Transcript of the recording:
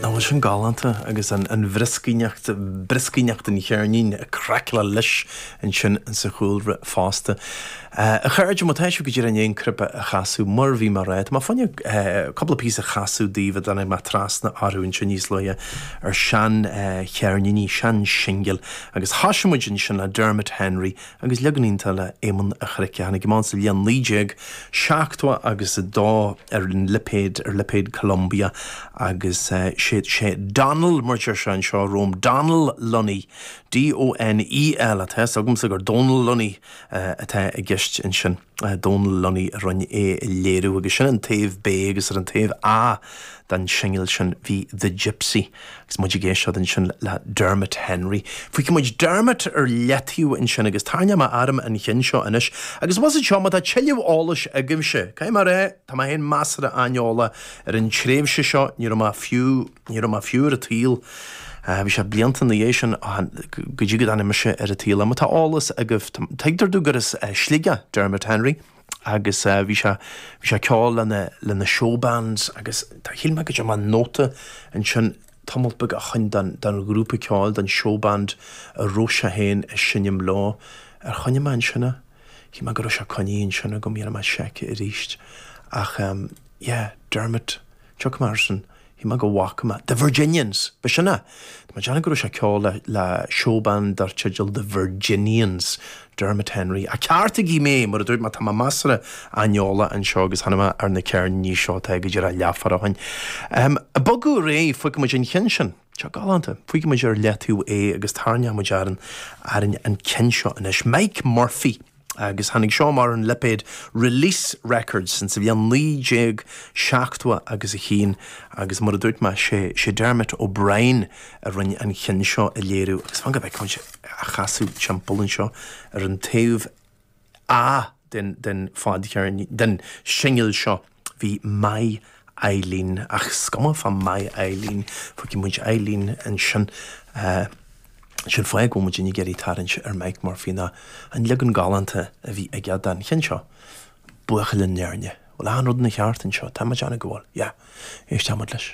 Nach bhfuil sin galánta agus an bhrioscaíneacht, brioscaíneacht an cheirnín, craicleáil leis ansin sa chúlra fosta. A chairde, má tá sibh go díreach i ndiaidh an cnaipe a chasadh, mar a bhí mé a rá, tá mé fá choinne cúpla píosa a chasadh daoibh a dtáinig mé trasna orthu ansin níos luaithe ar shean cheirníní, sean shingil agus thosaigh muid ansin le Dermot Henry, agus leagan iontach le Éamonn a' Chnoic, a tháinig amach sa bhliain 1970 agus a dó ar an lipéad, ar lipéad Columbia, agus sé, sé Donal, mar a deir sé anseo romham, Donal Lunny, D-O-N-E-L, tá a fhios agamsa gur Dónal Lunny atá i gceist ansin. Dónal Lunny a rinne é a léiriú agus sin an taobh B agus ar an taobh A den shingil sin bhí The Gipsy agus muid ag éisteacht ansin le Dermot Henry. Fuígfidh muid Dermot ar leataobh ansin agus tarrnóidh mé orm an cheann seo anois agus was it seo má tá tuilleadh eolais agaibhse, caithfidh mé rá, tá mé féin measartha aineolach ar an tréimhse seo, ní raibh mé fiú. Ní raibh mé fiú ar an tsaol. Bhí sé blianta ina dhiaidh sin go dtí go dtáinig mise ar an tsaol. Má tá eolas agaibh, tuigtear domh gur as Sligeach Dermot Henry agus bhí sé bhí sé ag ceol le na Showbands agus shíl mé go dtearn mé nóta ansin tamalt beag ó shin den, den ghrúpa ceoil, den Showband a raibh sé féin a seinm leo. Ar choinnigh mé ansin é? Shíl mé go raibh sé coinnithe ansin agam, dhéanfaidh mé seic aríst ach yeah, Dermot, tiocfaidh mé air sin. Shíl mé go bhfaca mé. The Virginians! Ba sin é. Tá mé ag déanamh go raibh sé ag ceol le, le showband dar teideal The Virginians. Dermot Henry. Ah, ceartaigí mé, mar a dúirt mé, tá mé measartha aineolach anseo agus tháinig mé ar na ceirníní seo tá go díreach leathuair ó shin. Ahem. Bogadh réidh, fuígfidh muid an ceann sin. Seo galánta. Fuígfidh muid ar leataobh é agus tarrnóidh muid orainn, orainn an ceann seo anois. Mike Murphy. agus tháinig seo amach ar an lipéad Release Records ins an bhliain 1970 agus a haon agus mar a dúirt mé sé sé Dermot O'Brien a rinne an cheann seo a léiriú agus fan go bhfeicfidh muid a chasadh timpeall anseo ar an taobh A den den fadcheirnín den singil seo. Bhí My Eileen, ach is cuma fá My Eileen, fágfaidh muid Eileen ansin, an fáth go bhfuil muidinne ag iarraidh tarraingt ar Mike Murphy ná an leagan galánta a bhí aige den cheann seo, Buachaill ón Éirne. Bhfuil achan rud ina cheart anseo? Tá mé ag déanamh go bhfuil. Yeah. Éistfidh muid leis.